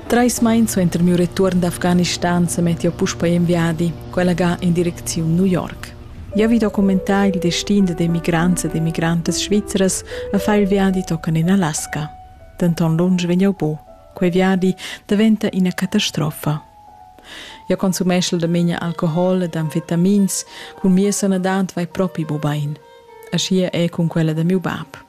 Treis meins suenter miu retuorn d'Afghanistan semet jeu puspei en viadi, quella ga en direcziun New York. Jeu vi documentar il destin da emigrants ed emigrantas svizras e far il viadi tochen en Alaska. Denton lunsch vegn jeu bu. Quei viadi daventa ina catastrofa. Jeu consumeschel da memia alcohol ed amfetamins, cun mia sanadad vai propi bu bein. Aschia è cun quella da miu bab.